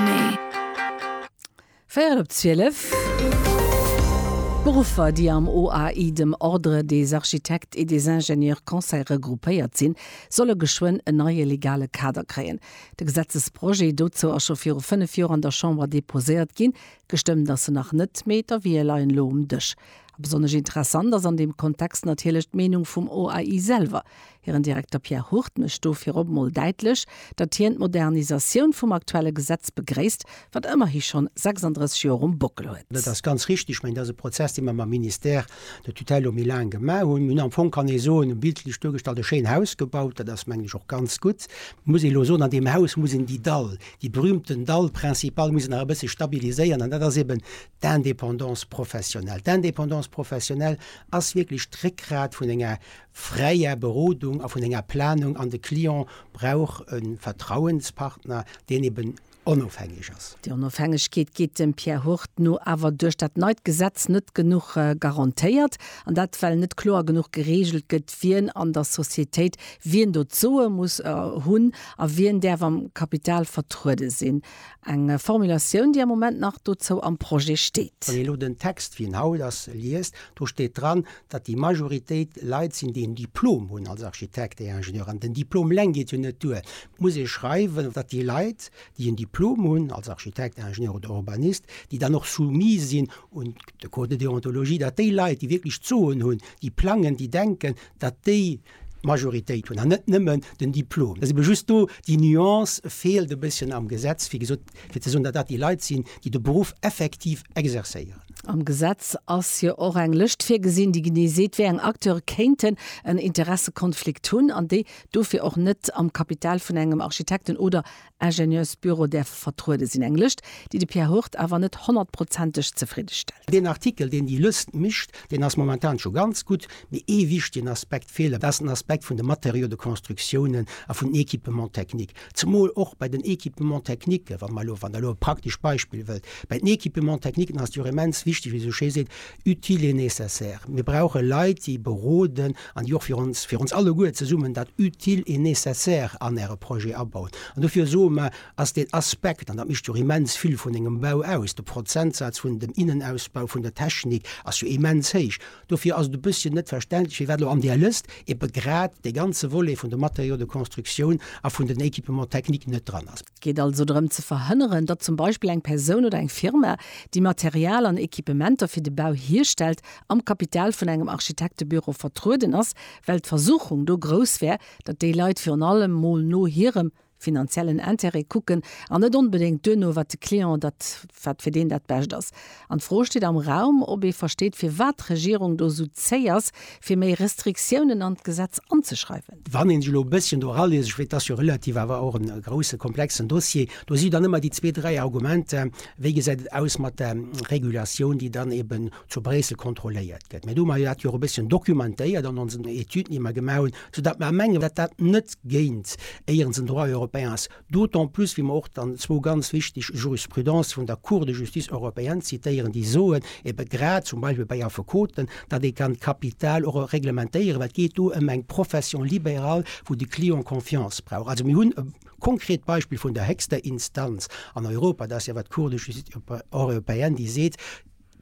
Nee. Véierel op zwielef. D'Beruffer, déi am OAI, dem Ordre des architectes et des ingénieurs conseils, regroupéiert sinn, solle geschwënn en neie legale Kader kréien. De Gesetzesprojet dozou ass scho viru fënnef Joer an der Chamber deposéiert ginn. Gestëmmt ass en nach net, mee d'Avië leien elo um Dësch. A besonnesch interessant ass an deem Kontext natierlech d'Meenung vum OAI selwer. Hiren Direkter Pierre Hurt mécht do virop mol däitlech, datt hien d'Modernisatioun vum aktuelle Gesetz begréisst, wat ëmmerhi schonn 36 Joer um Bockel huet. Dat ass ganz richtig. Ech mengen, dat ass e Prozess, dee mer mam Ministère de tutelle lo méi laang gemaach hunn. Mir hunn am Fong, kann ee soen, bildlech duergestallt, e schéin Haus gebaut. Dat ass, mengen ech, och ganz gutt. Et muss ee lo soen, an deem Haus muss een déi Dall, déi berühmten Dall principale muss een nach e bësse stabiliséieren, an dat ass eben d'Indépendance professionnelle. D'Indépendance professionnelle ass wierklech d'Réckgrat vun enger fräier Berodung a vun enger Planung an de Client brauch e Vertrauenspartner, deen eben onofhängeg ass. Déi Onofhängegkeet geet dem Pierre Hurt no awer duerch dat neit Gesetz net genuch garantéiert, an dat well net kloer genuch gereegelt gëtt, wien an der Societéit wien do d'Soe muss hunn a wien däerf am Kapital vertruede sinn. Eng Formulatioun, déi am Moment nach dozou am Projet steet. Wann een elo den Text, wéi en haut ass, liest, do steet dran, datt déi Majoritéit Leit sinn, déi en Diplom hunn als Architekt et Ingenieur, an den Diplom eleng geet jo net duer, muss ee schreiwen, datt déi Leit, déi en Diplom hunn als Architekt, Ingenieur oder Urbanist, déi dann och soumis sinn un de Code de déontologie, datt déi Leit, déi wierklech d'Soen hunn, déi plangen, déi denken, datt déi, D'Majoritéit hunn, an net nëmmen den Diplom. Et ass ebe just do, déi Nuance feelt e bësschen am Gesetz, wéi gesot, fir ze soen, datt dat déi Leit sinn, déi de Beruff effektiv exercéieren. Am Gesetz ass jo och eng Lëscht virgesinn, déi genee seet, wéi eng Acteure kéinten en Interessekonflikt hunn an déi dofir och net am Kapital vun engem Architekten oder Ingenieursbüro däerfe vertruede sinn. Eng Lëscht, déi de Pierre Hurt awer net honnertprozenteg zefridde stellt. Deen Artikel, deen déi Lëscht mécht, deen ass momentan scho ganz gutt, mee ee wichtegen Aspekt feelt, dat ass den Aspekt vun de Matériaux de constructiounen a vun den Équipements techniques. Zemol och bei den Équipements techniquen, wann Der elo e praktesch Beispill wëllt, bei den Équipements techniquen ass et jo immens wichteg, wéi esou schéi seet, Utile et nécessaire, mir brauche Leit, déi beroden an déi och fir ons, fir ons alleguer zesummen, dat Utile et nécessaire an Äre Projet abauen. An dofir soe mer, ass deen Aspekt, an dat mécht jo immens vill vun engem Bau aus, de Prozentsaz vun dem Innenausbau vun der Technik ass jo immens héich, dofir ass et e bësschen net verständlech, firwat elo an där Lëst eebe grad dee ganze Volet vun de Matériaux de construction a vun den Équipements techniques net dran ass. Geet also drëm ze verhënneren, datt zum Beispill eng Persoun oder eng Firma, déi Material an Equipementer fir de Bau hierstellt, am Kapital vun engem Architektebüro vertrueden ass, well d'Versuchung do grouss wär, datt déi Leit virun allem mol no hirem finanziellen Intérêt kucken an net onbedéngt duerno, wat de Client, dat wat fir deen dat Bescht ass. An d'Fro steet am Raum, ob ee versteet, firwat d'Regierung do esou zéi ass, fir méi Restriktiounen an d'Gesetz anzeschreiwen. Wann ee sech elo e bësschen do eraliest, ech weess, et ass jo relativ awer och e grousse, komplexen Dossier, do si jo dann ëmmer déi zwee, dräi Argumenter, Wéi gesäit et aus mat der Regulatioun, déi dann eeben zu Bréissel kontrolléiert gëtt? Mä do hu mer jo dat och e bësschen dokumentéiert an onsen Etüden, déi mer gemaach hunn, soudatt mer mengen, datt dat net géint éieren den Droit européen ass. D'autant plus, wéi mer och dann zwou ganz wichteg Jurisprudences vun der Cour de Justice européenne zitéieren, déi soen, ebe grad zum Beispill bei Affekoten, datt ee kann d'Kapital och reglementéieren, well et geet do ëm eng Profession libérale, wou de Client Confiance brauch. Also mir hunn e konkret Beispill vun der héchster Instanz an Europa, dat ass jo awer d'Cour de Justice européenne, déi seet,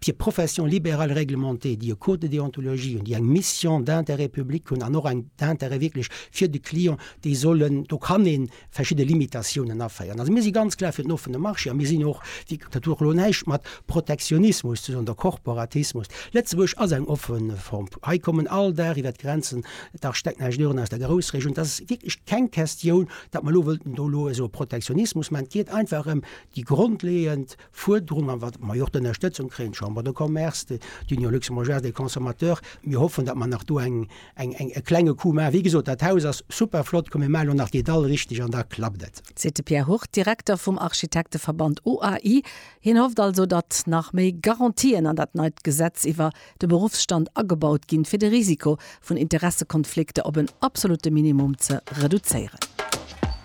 Fir Professions libérales réglementées, déi e Code de déontologie hunn, déi eng Mission d'intérêt public hunn an och eng d'intérêt wierklech fir de Client, déi sollen, do kann ee verschidde Limitatiounen aféieren. Also mir si ganz klar fir den offene Marché a mir sinn och, dat huet och elo näischt mat Protektionismus ze soen oder Korporatismus. Lëtzebuerg ass eng offe Form. Hei kommen all Dag iwwert d'Grenzen d'Architecteningenieuren aus der Groussregioun. Dat ass wierklech keng Questioun, datt mer elo wëllten do elo esou e Protektionismus maachen. Et geet einfach ëm déi grondleeënd. Fuerderung an wat mer jo och d'Ënnerstëtzung kréien, d'Chambre de Commerce, d'Union Luxembourgeoise des Consommateurs, mir hoffen, datt mer nach do eng, eng, eng, e klenge Coup maachen. Wéi gesot, dat Haus ass super flott, komm mir maachen elo nach déi Dall richteg an da klappt et. Seet de Pierre Hurt, Direkter vum Architekteverband OAI. Hien hofft also, datt nach méi Garantien an dat neit Gesetz iwwer de Beruffsstand agebaut ginn, fir de Risiko vun Interessekonflikter op en absolutte Minimum ze reduzéieren.